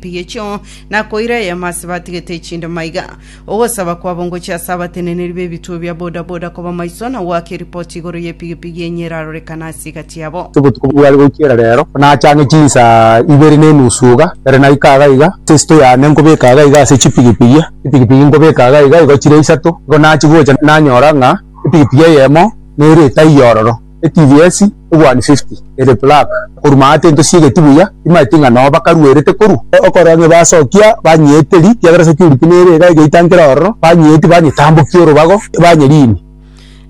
Rigechio nakoira eema ase batigete echinde maiga, ogosaba kwabo ngochia ase abateneneri b'ebituo bia boda boda koba maiso na goaka eripoti igoro y'epigipigi enye erarorekane ase egati yabo. Ase obotuko bware goichera reero, ekero nachang'e chinsaa ibere na enusu iga, ere naika iga iga, ase esito yane nkobeka iga iga ase chipigipigi, chipigipigi nkobeka iga iga igo chire isato. Igo nachia gocha nanyora ng'a epigipigi eyemo nere etaiyo ororo. Etivs obwani fifty ere black. Koruma aa tintosiegeti buya timaeti ng'a noo bakaruerete korwa. Okorora ng'a basokia banyeete ri kiagera security nere iga egeita nkere ororo banyeeti banyetambokia orobago banyeriini.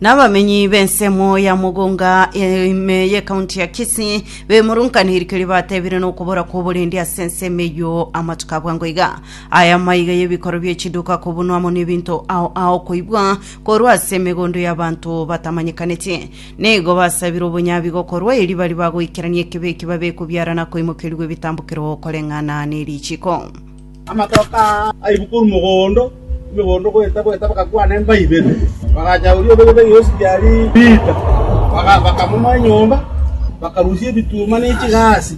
Nabamenyi b'ensemo ya Mugunga ime y'ecounty ya Kisii bemurunkanire rikiria batebire nokobora kw'oborendi ase ensemo eyio amatuko abwango iga. Aya maiga y'ebikorwa bie chiduka kobunwa amo n'ebinto ao ao koibwa. korwa ase emegondo y'abanto batamanyekaneti. Nigo basabire obonyabi gokorwa eri bari bagoikerania ekebe eki babe kobiara na koimokerigwa ebitambokero koreng'ana ne richiko. Amatoke aa aibwe korwa mogondo, emegondo goeta goeta bagakwana emba ibere. Bagacha oria obegetwe Yesu riaria riita, baka- bakamomoa enyomba, bakarusia ebituma ne chigasi.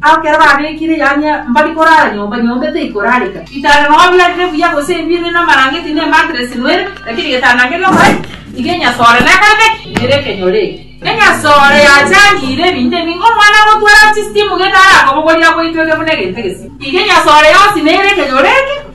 Ekero babekire yaani mbari korara nyomba, nyomba etaikorareka. Bitanda nonya biarire buya gose ebire namarangeti ne matress nwere, lakini getanda keria omorai tiga enyasore nekorete ki? Nere ekenyoro eke. Enyasore yachangiire ebinto ebinge. Omwana agotwara chisimu gete arakobogorire agoitweke buna egento egesibie. Tiga enyasore yonsi nere ekenyoro eke.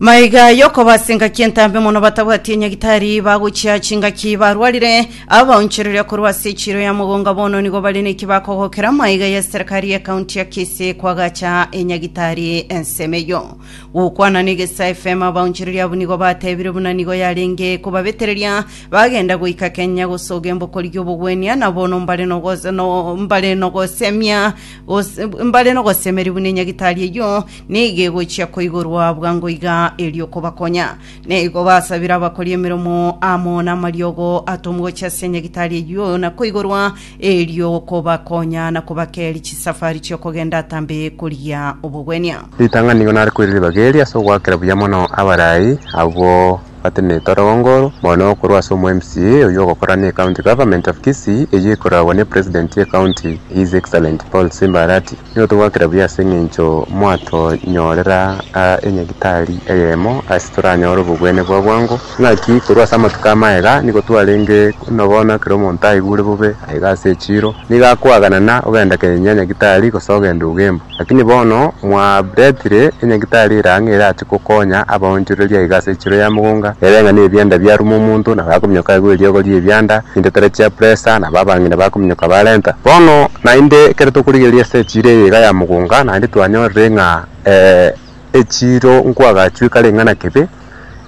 Maiga yokobaasa engaki entambe mono batabwati enyagitari bagochia chingaki barwarire abaonchoreria korwa ase echiro ya mogonga bono nigo bare neki bakogokera maiga ya serikari ya kaunti ya Kisii kwagacha enyagitari ensemo eyo gokwana na egesa FM abaonchoreria abwo nigo batebire buna nigo yarenge kobabetereria bagenda goika Kenya gosoga embokori y'obogwenia na bono mbare nogoz- no- mbare nogosemia Gose mbare nogosemeria buna enyagitari eyio nigo egochia koigorwa bwango iga erio kobakonya. Na igo basabire abakori emeremo amo namariogo atomwe gochia ase enyagitari eyio na koigorwa erio kobakonya na kobakeria chisafari chi'okogenda atambe korigia obogwenia. Ritang'ani nigo nare koiriribaga eeri ase ogoakera buya mono abarai abwo. bateneete orogongo oro, mono korwa ase omo MCA oyio ogokora ne County Government of Kisii eyio ekoragwa ne President ye County His Excellent Paul Simba Arati, nigo togwakera buya ase eng'encho mwatonyorera aa enyagitari eyemo ase toranyore obogwene bwa bwango, naki korwa ase amatuko amaye igaa nigo twarenge buna bono ekero omonto aigure bobe aiga ase echiro nigo akoaganana ogenda kenya nyagitari gose ogenda ogemba. Lakini bono mwaretire enyagitari ere ang'e erache gokonya abaonchoreria aiga ase echiro ya mogonga, ere ng'a nebianda biaruma omonto, nabo akominyoka aigwa eriogo ri'ebianda, naende tera chia presa, nabo abang'ina bakominyoka barenta. Bono naende ekero tokorigereria ase echiro eye iga ya mogonga, naende twanyorire ng'a ee. echiiro nkwagachwe kare ng'a nakebe,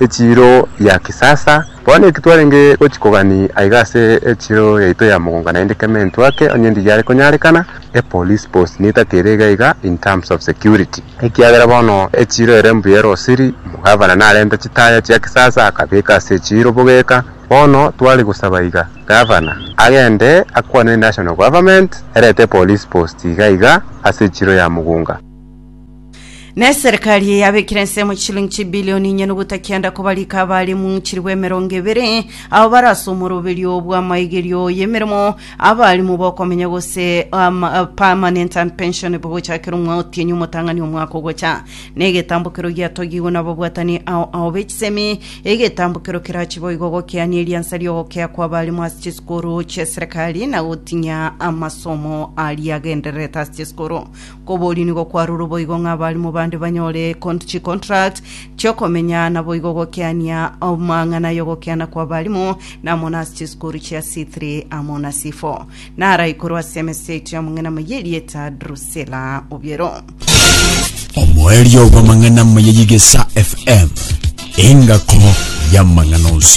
echiiro ya kisasa. Bono eki twarenge gochia kogania aiga ase echiiro yaito ya mogongo naende keme intwe ake onye ndi yare konyarekana, e police post nigo etagete ere iga iga in terms of security. Ekiagera bono echiiro ere mbuya ere osiri, omogavana narente chitaya chia kisasa akabeka ase echiiro bogeka. Bono tware gosaba iga gavana agende akwane ne national government erete e police post iga iga ase echiiro ya mogonga. Ne serikali yabekire ensemo chilingi chibilioni inye nogotakianda kobarika abarimu chirigwa emerongo ebere abo barase omoroberio bw'amaigerio y'emeremo abarimu bokomenya gose um, uh, permanent and pension bogochakera omwa otienyi omotang'ani omwaka ogocha na egetambokero giatogigwe nababwatani ao ao b'echisemi egetambokero kerachi boigo gokeania eriansa riogokea kwa abarimu ase chisukuru chia serikali na gotinya amasomo aria agendererete ase chisukuru Koborio nigo kwarurwe boigo ng'a abaalimu bande banyore con- chicontract chi'okomenya naboigo gokiania amang'ana y'ogokiana kw'abaalimu na amo nase chisukuru chia C3 amo na C4 na araikorwe ase emesa yaito y'amang'ana amaya erieta Drusilla Obiero. omoerio bw'amang'ana amaya y'egesa FM, engako y'amang'ana onsi.